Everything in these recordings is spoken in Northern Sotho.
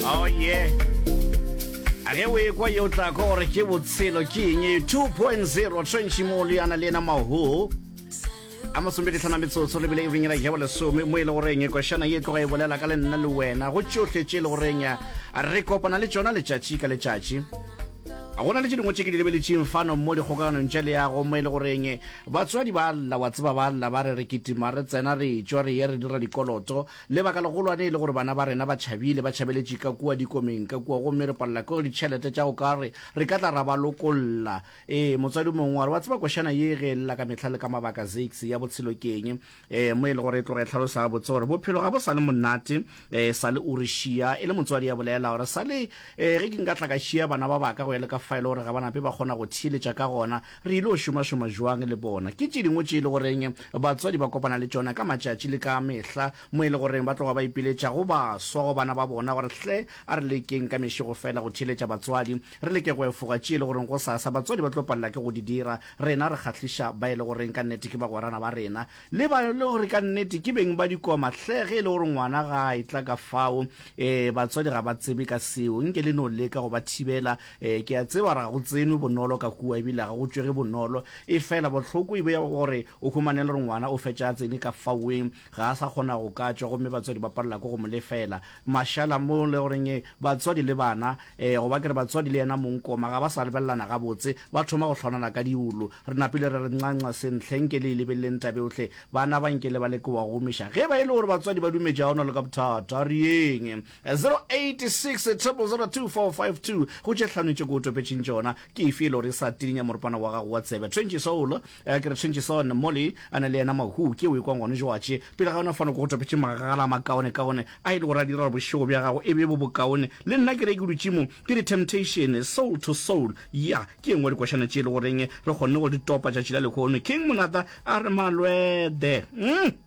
Oh yeah. A ge o ekwa yo tla kwa gore ke botshelo ke eng 2.0 tshwentšhi mo le yana le ena maho a masombedi tlhana metsotso lebile e benyela jabo lesome mo e le goreng e košana ye tloga e bolela ka le nna le wena go tšohle tše e le goreng ya re kopana le tšona letšatši ka letšatši a gona le tše dingwe tše ke di lebeletšeng fano mo dikgokaganong tša leago mo e le goreng batswadi ba lla wa tseba ba lla ba re re kitima re tsena re tšwa re ye re dira dikoloto Lebaka legolwane e le gore bana ba rena ba tšhabile, ba tšhabeletše ka kua dikomeng ka kua, gomme re palela ke ditšhelete tša go ka re re ka tla ra ba lokolla. Ee, motswadi mongwe wa re, Wa tseba košana ye ge e lla ka mehla le ka mabaka, Zakes, ya botshelo ke eng? Ee, mo e lego gore e tloga e hlalosa gabotse gore bophelo ga bo sa le monate e sa le o re šia e le motswadi ya bolela gore, Sa le ge ke nka tla ka šia bana ba baka go ya le ka fa e le gore ga ba nape ba kgona go theeletša ka gona, Re il'o šomašoma jwang le bona? Ke tše dingwe tše e le goreng batswadi ba kopana le tšona ka matšatši le ka mehla, mo e le goreng ba tloga ba ipiletša go baswa go bana ba bona gore, Hle, a re lekeng ka mešego feela go theeletša batswadi, re leke go efoga tše e le goreng gosasa batswadi ba tlo palela ke go di dira, rena re kgahliša ba e le goreng ka nnete ke bagwerana ba rena, le ba e le gore ka nnete ke beng ba dikoma. Hle, ge e le gore ngwana ga a etla ka fao, ee, batswadi ga ba tsebe ka seo. Nke le no leka go ba thibela, Ee, ke a tseba ga go tsenwe bonolo ka kua ebile ga go tšwege bonolo. Efela bohloko e be ya gore o humane e le gore ngwana o fetša a tsene ka faweng, ga a sa kgona go ka tšwa gomme batswadi ba palela ke go mo lefela mašala mo e le goreng batswadi le bana, go ba ke re batswadi le yena mong Koma, ga ba sa lebelelana gabotse, ba thoma go hlwanana ka diulu. Re napile ra re, Nxa-nxa, Sentle, nke le e lebeleleng taba eohle. Bana ba nke le ba leke go ba go humiša. Ge e ba e le gore batswadi ba dumetše ga go na le ka bothata, a re yeng. 086 200 245 2 go tše hlano tše ke go topetšeng tšona ke efe e le gore e sa tininya moripana wa gago wa tsebe Twenty Soul eh, ke re Twenty Son Molly a na le yena Mahoo ke o e kwang gone joatše pele ga yona fano ke go topetšeng magagala a makaone kaone a e le gore a dira gore bošego bja gago e be bo bokaone le nna ke re ke dutše mo ke re Temptation Soul to Soul ya ke engwe dikošana tše e le goreng re kgonne go di topa tšatši la lehono King Monata a re Malwede mm.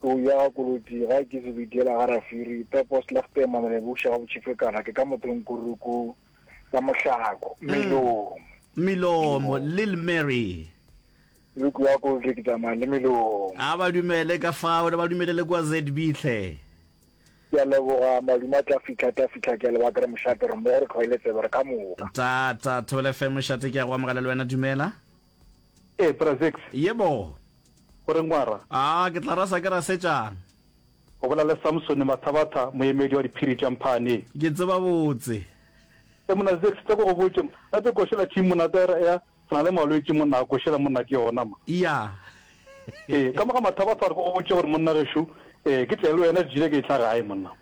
Tou ya ga Koloti ga ke se bidela ga Rafiri, Pepo Slegte Mamelebushe ga Botšhifekana ke ka mothong Kuruku ka Mohlako, Melomo. Melomo, Lil Mary. Luku ya Koloti ke tsamaya le Melomo. A ba dumele ka fao le ba dumele le kwa ZB hle. Ke a leboga madume a tla fitlha tla fitlha ke a leboga ke re mošate re mmogo re tlhoile tsebe re ka moka. Ta ta Thobela FM mošate ke a go amogela le wena dumela. Ee, Bra Zix. Yebo. O reng wa ra? A ke tla rasa ke rasetšang? O bolela le Samsone Mathabatha, moemedi wa diphiri tša Mphaaneng. Ke tseba botse. Ee, Monna Zix, tle ke go botše, ga tse košela thing monna Tayra ea se na le malwetši monna a košela monna ke yona ma. Iya. Ee, ka mo ga Mathabatha gore ke go botše gore monna gešo, ee, ke tle le wena ke tšile ke etla gae monna.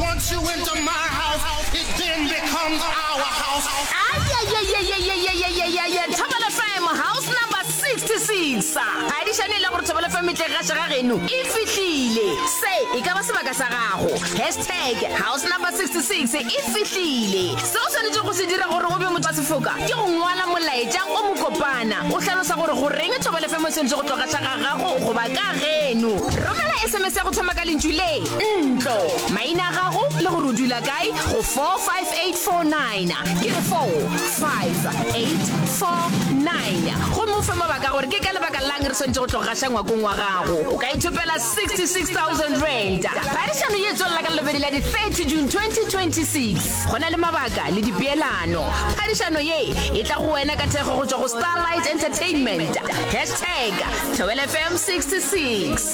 Once you into my house, it then becomes our house. thobela fm house number 66 adišane e le gore thobela fm tle ga šega geno e fihlile se e ka ba sebaka sa gago hashtag house number 66 e fihlile se o swanetše go se dira gore o be motho wa sefoka ke go ngwala molaetšang o mokopana o hlalosa gore goreng thobela fm o swanetše go tloga tlhaga gago goba ka geno romela sms ya go thoma ka lentšu le ntlo maina a gago le gore o dula kae go 45849 ke 45849 gomme o fe mabaka gore ke ka lebaka lang re swanetse go tlo gaša ngwakong wa gago o ka ithopela 66000 rand phadišano ye tswelela ka lobedi la di-30 june 2026 go na le mabaka le dipeelano phadišano ye e tla go wena ka thekgo go tswa go starlight entertainment hashtag tobelfm 66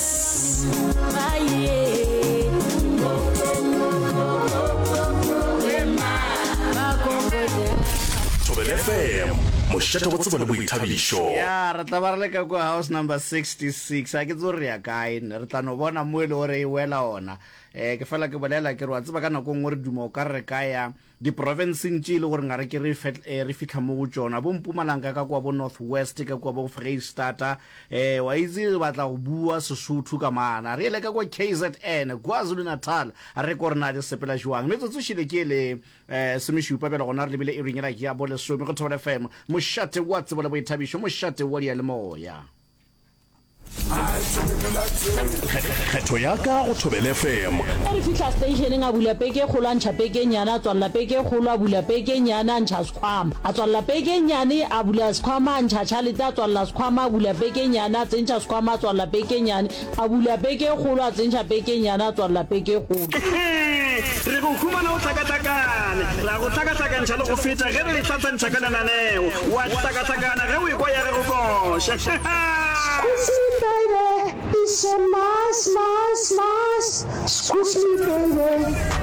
fm mošate go tsebo le boithabišo ya re tla ba re leka kwa house number 66 a ke tso re ya kae ne re tla no bona mo e le gore e wela ona um ke fela ke bolela ke re wa tseba ka nako nngwe re duma o ka re ka ya Diprofenseng tše e le gore ngare ke re fetl eh, re fihla mo go tšona, bo Mpumalanga ka kua bo North West ka kua bo Freistata, eh, wa itse re batla go bua Sesotho ka mana. Re ele ka kua KZN, KwaZulu-Natal, a re ko re na le sepela joang. Metsotso šele ke e le eh, semešupa bjale gona re lebile iring yela ya bo lesome go Thobela FM, mošate wa tsebo le boithabišo, mošate wa diyalemoya. kgetho ya ka go thobele fm a re fitlha stationeng a bula peke e kgolo a ntšha peke e nyane a tswalela peke e kgolo a bula peke e nyane a ntšha sekgwama a tswalela peke e nyane a bula sekgwama a ntšha tšhalete a tswalela sekgwama a bula peke e nyane a tsentšha sekgwama a tswalela peke e nyane A bula peke e kgolo, a tsentšha peke e nnyane, a tswalela peke e kgolo. Hehe! Re go humana o hlakahlakane. Re a go hlakahlakantšha le go feta ge re e hlahlantšha ka lenaneo. O a hlakahlakana ge o ekwa ya re go koša. Hahaa! Squeeze me baby, it's so nice, nice, nice, squeeze me baby.